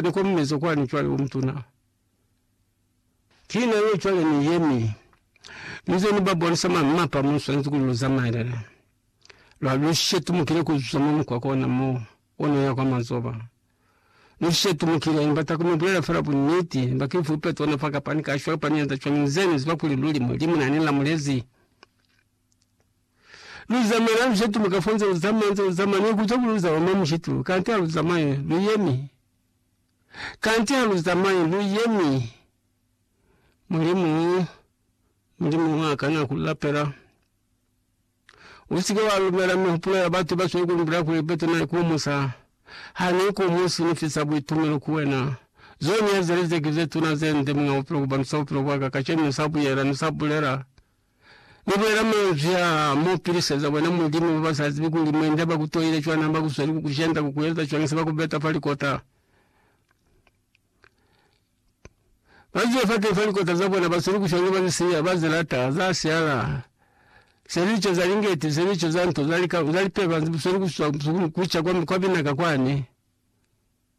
Ni komeza kwani cwale u mutuna. Ki na yo cwale ni yemi. Ni ze ni ba bonisa mwa mapa mo swanezi kuli lu zamaelele. Lwa lu shetumukile ku zuza mwa mukwako ona mo, o no ya kwa mazoba. Ni shetumukile, ni bata ku mi bulela fela buniti. Ni ba ki fupe tona fa kapani ka shwa, kapani ya nda shwa, mi nze ni ziba kuli luli Mulimu na ni lamulezi. Lu zamaya na lujetulu kafo nze lu zamaya nze lu zamaya ni kuca kuli lu zamaya mwa mushetulu kanti ha lu zamayi lu yemi kanti ha lu zamayi lu yemi. Mulimu Mulimu ha kana ku lapela usike wa lumela mihupulo ya batu ba swe ku lu mbila kuli bete na ikumusa ha ni ikumusi ni fisa buitumelo ku wena. Zone ya zeli ze ki ze tuna ze nde muñ'a bupilo ku bandusa bupilo bwa ka kacenu ni sa buyela ni sa bulela. Ni bulela manzwi aa, Mu piliseza bona Mulimu ba ba sa zibi kuli mwenda ba ku toile cwana ha ba ku zweli ku ku jenda, ku ku eza cwana se ba ku beta fa likota. Ba zibe fateni fa likota za bona, ba zweli ku shwa nge ba li siya, ba ze lata, za siala. Se lico za lingeti, se lico za nto, za lika, za lipeba, bu zweli ku swa, ku ca kwa, kwa binaka kwani.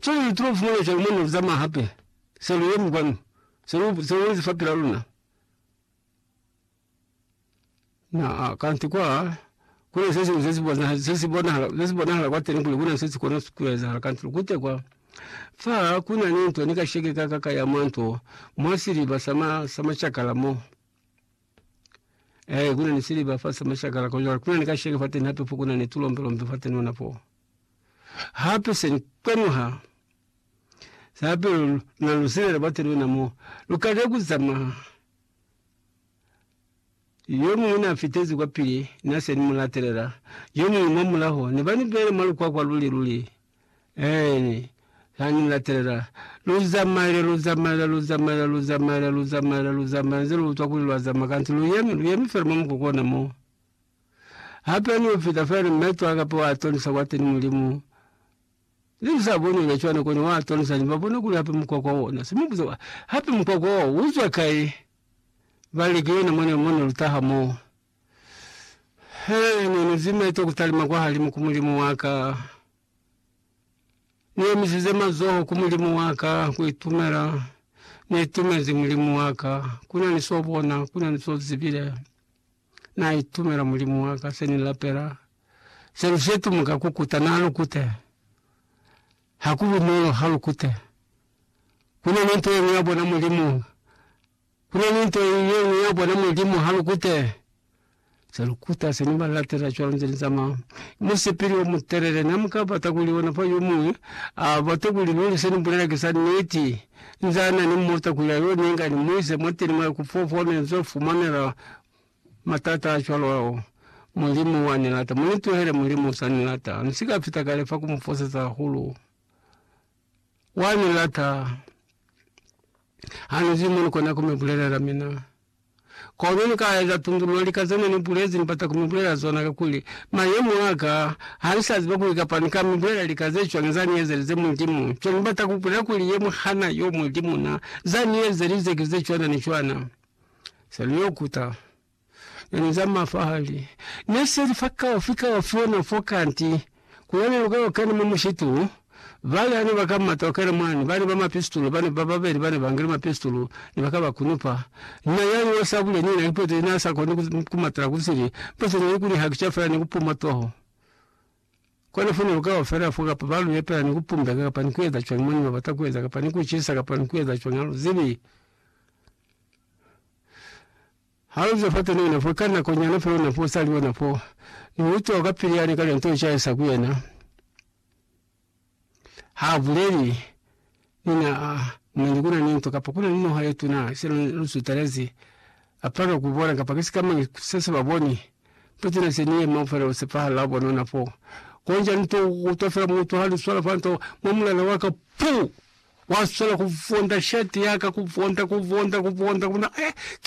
Ki luli tu fumana cwalo mwa nako za mwa hape se lu yemi kwanu, se lu, se lu ezi fa pila luna? Na, kanti kwa, ku na se siñwi se si bona, se si bonahala, se si bonahala kwateni kuli ku na se si kona ku ezahala, kanti lukute kwa. Fa ku na ni nto ni kasheke ka ka ka ya mwa nto, mwa siliba sa ma, sa macakala mo. Eh, kuna ni siliba fa samashakala ko jwale, kuna ni kasheke fateni hape fo, kuna ni tulombelombe fateni ona fo. Hape se ni kwenuha hape na lusilele bate lwena mo lukale kuzama. Yo mungwe na fitezi kwa pili, na se ni mulatelela. Yo mungwe mwa mulaho, ni bani bele mwa lukwakwa luli luli. Eeni, ha ni latelela. Lu zamaile, lu zamaile, lu zamaile, lu zamaile, lu zamaile, lu zamaile, inze lu utwa kuli lwa zamaya, kanti lu yemi, lu yemi fela mwa mukuku ona mo. Hape ni upita fela ni meto a kape wa atonisa kwateni Mulimu. Ne ni sa boni ona cwana kona wa atonisa, ni ba bona kuli hape mukwakwa ona. Se mu buza, Hape mukwakwa wo, uzwa kai? Ba li, Ki yona mwana yo mone lutaha mo. He ne ni zimete ku talima kwa halimu ku Mulimu wa ka, ni omisize mazoho ku Mulimu wa ka ku itumela ni itumezi Mulimu wa ka. Ku na ni so bona, ku na ni so zibile. Na itumela Mulimu wa ka, se ni lapela, se lu setumuka ku kuta. Na lu kute. Ha ku bunolo ha lu kute. Ku na ni nto ye ngi ya bona Mulimu. Kuna ni nto yeñwi ya bona Mulimu ha lu kute, za lu kuta sina ba latela cwalo nze ni zamaya. Musipili o mutelele, na muka bata kuli ona fa yo muñwi a bate kuli luli se ni bulela ki za niti. Nza na ni muta kuli a yo ni inga ni mu ise mwateni mwa ku fofa ne nzo fumanela matata a cwalo ao. Mulimu wa ni lata. Mu ni tuhele, Mulimu sa ni lata. Ni si ka fita kale fa ku mu foseza hahulu. Wa ni lata. Ha ni zi mo ni kona ku mi bulelela mina. Kono ni ka eza tundululo lika zene ni bulezi ni bata ku mi bulelela zona ka kuli, mayemo a ka, ha ni sa ziba kuli kapa ni ka mi bulelela lika ze cwani za ni ezelize Mulimu. Nto ni bata ku bulela kuli ye mu hana yo Mulimu na. Za ni ezelize ki ze cwana ni cwana. Se lu yo kuta. Nani za mafa hali ne seli fa kaufi kaufi ona fo kanti kuyane luka yo kena mwa mushitu. Bali hane ba ka mata ukena mwani, bane ba mapistulu bane ba babeli bane bangile mapistulu ne baka ba kunupa. Na yani wa sabule ni na ipotele na sa koni kumatela kusili, mpo se neli kuli hakica fela ni kupuma toho. Kono fo ne lu ka ba fela fo, kapa ba lu epela ni ku pumbeka, kapa ni ku eza cwañi mo ne ba bata ku eza, kapa ni ku cisa, kapa ni ku eza cwañi, ha lu zibi. Ha lu zwa fateni ona fo, ka nako nyana fela ona fo, u sa li ona fo, ni utwa ka pili yane ka lya nto u caisa ku yena. Ha buleli ni na, a, mani kuna ni nto, kapa kuna ni noha ye tuna, sina lu sutelezi, a palelwa ku bona, kapa ki sikamañi se se ba boni, nto tuna se ni yema fela ku sepahala ha bonona fo. Konja nto utwa fela mutu ha lu swala fa nto, mwa mulala wa ka, puu! Wa swanela ku vonda shati ya ka, ku vonda, ku vonda, ku vonda, ku bona, eh, ki